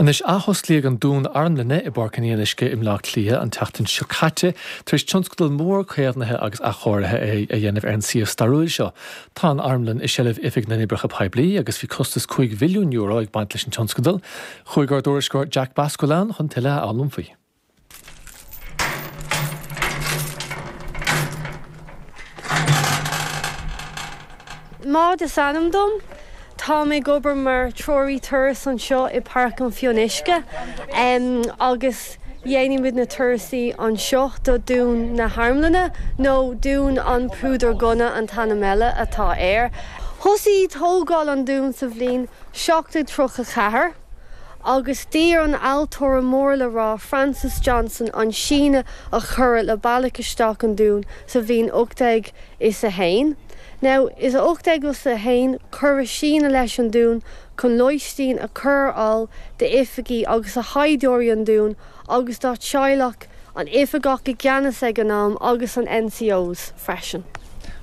Anois, athosclaíodh an dún armlainne i bPáirc an Fhionnuisce i mBleá Cliath an tseachtain seo caite tar éis tionscadal mór caomhnaithe agus athchóirithe a dhéanamh ar an suíomh stairiúil seo. Tá an armlann i seilbh Oifig na nOibreacha Poiblí agus bhí costas €5 mhilliún ag baint leis an tionscadal. Chuaigh ár dtuairisceoir Jack Basquel ann chun tuilleadh a fhoghlaim faoi. Maud is ainm dom. Táim ag obair mar Treoraí Turas anseo i bPáirc an Fionnuisce agus dhéanaimid na turasaí anseo do Dún na hArmlainne, nó Dún an Phúdar Gunna an t-ainm eile atá air. Thosaigh tógáil an dún sa bhliain 1734. agus dear an ailtire mór le rá Francis Johnson an síneadh a cuireadh le bealach isteach an Dúin sa bhliain ocht déag is a haon, nó is ocht déag is a haon, cuireadh síneadh leis an Dún chun lóistín a chur ar fháil d'oifigigh agus do shaighdiúirí an Dúin agus dá dteaghlach, an oifigeach i gceannas ag an am, agus an NCOs freisin.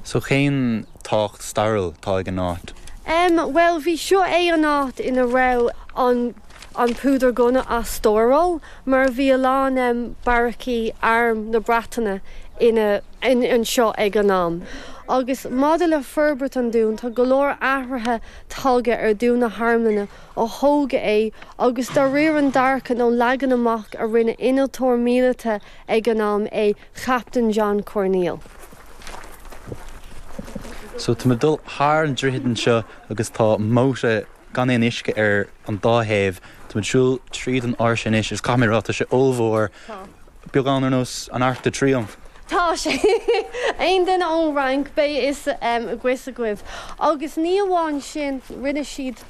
So cén tábhacht stairiúil atá ag an áit? Em, bhuel, bhí, seo é an áit ina raibh an, an púdar gunna á stóráil mar bhí a lán, em, beairicí Arm na Breataine ina, in, anseo ag an am. Agus maidir le forbairt an dún, tá go leor athruithe tagtha ar Dún na hArmlainne ó thógadh é agus de réir an dearcadh nó leagan amach a rinne innealtóir míleata ag an am é Captaen John Corneille. So táimid ag dul thar an droichead anseo agus tá móta gan aon uisce ar an dá thaobh. Táimid ag siúl tríd an áirse anois agus caithfidh mé a rá, tá sé ollmhór. Tá. Beagán ar nós an Arc de Triomphe. Tá sé! Aon duine ón Fhrainc, beidh fhios agaibhse agaibh. Agus ní amháin sin, rinne siad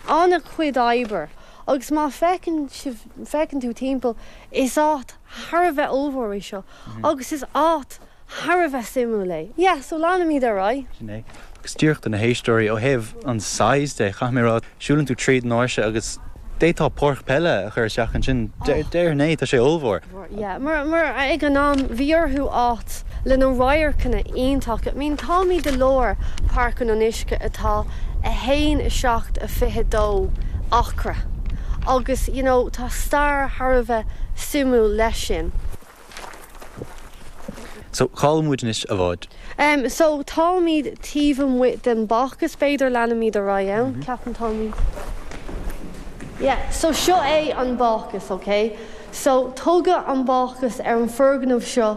an-chuid oibre agus má fé, féachann tú timpeall, is áit thar a bheith ollmhór é seo agus is áit thar a bheith suimiúil é. Yeah, so leanfaimid ar aghaidh. Sin é. Agus díreach do na héisteoirí, ó thaobh an size de, caithfidh mé a rá, siúlann tú tríd an áirse agus d'fhéadfá páirc peile a chur isteach ansin. Déarfainn é, tá sé ollmhór. Yeah, mar ag an am, bhí orthu áit. le na radharcanna iontacha. I mean, táimid i lár Páirc an Fhionnuisce atá a haon, a seacht, a fiche, a dó acra agus, you know, tá stair thar a bheith suimiúil leis sin. So, cá bhfuil muid anois, a Mhaud? Em, so, táimid taobh amuigh den Bácús, b'fhéidir, leanaimid ar aghaidh ann, ceapaim, táimid, yeah, so seo é an Bácús, okay? So, tugadh an Bácús ar an fhoirgneamh seo.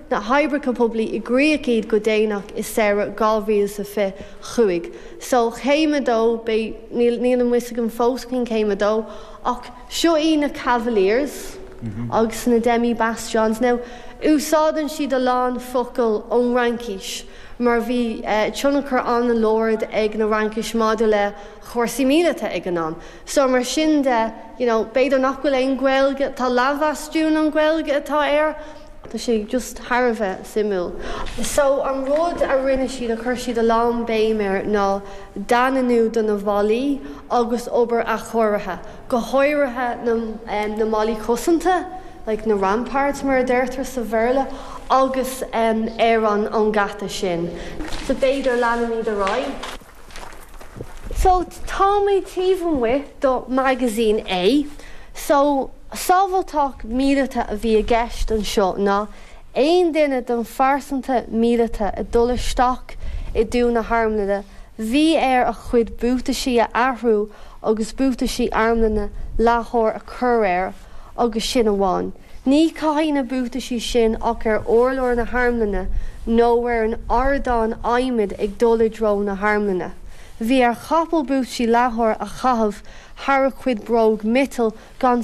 na hoibreacha poiblí i gcrích é go déanach i samhradh 2025. So, céim a dó, beidh, níl, níl maoiniú againn fós don céim a dó, ach seo í na Cavaliers agus na Demi Bastions. Now, úsáideann siad a lán focal ón Fhraincis, mar bhí tionchar an-láidir ag na Francaigh maidir le chúrsaí míleata ag an am. So mar sin de, you know, b'fhéidir nach bhfuil aon Gaeilge, tá leathbhastún an Ghaeilge atá air, tá sé just thar a bheith suimiúil. So an rud a rinne siad, a chuir siad a lán béim air ná daingniú do na bhallaí agus obair athchóirithe, go háirithe na, em, na mballaí cosanta, like na ramparts mar a deirtear sa Bhéarla, agus, em, ar an, an geata sin. So b'fhéidir leanfaimid ar aghaidh. So táimid taobh amuigh de Magazine A. So, sábhailteacht míleata a bhí i gceist anseo ná aon duine den phearsanra míleata ag dul isteach i dtreo na harmlainne bhí air a chuid buataisí a athrú agus buataisí armlainne leathair a chur air agus sin amháin. Ní chaithfí na buataisí sin ach ar urlár na harmlainne nó ar an ardán adhmaid ag dul i dtreo na harmlainne. Bhí ar chapall buataisí leathair a chaitheamh thar a chuid bróg miotail gan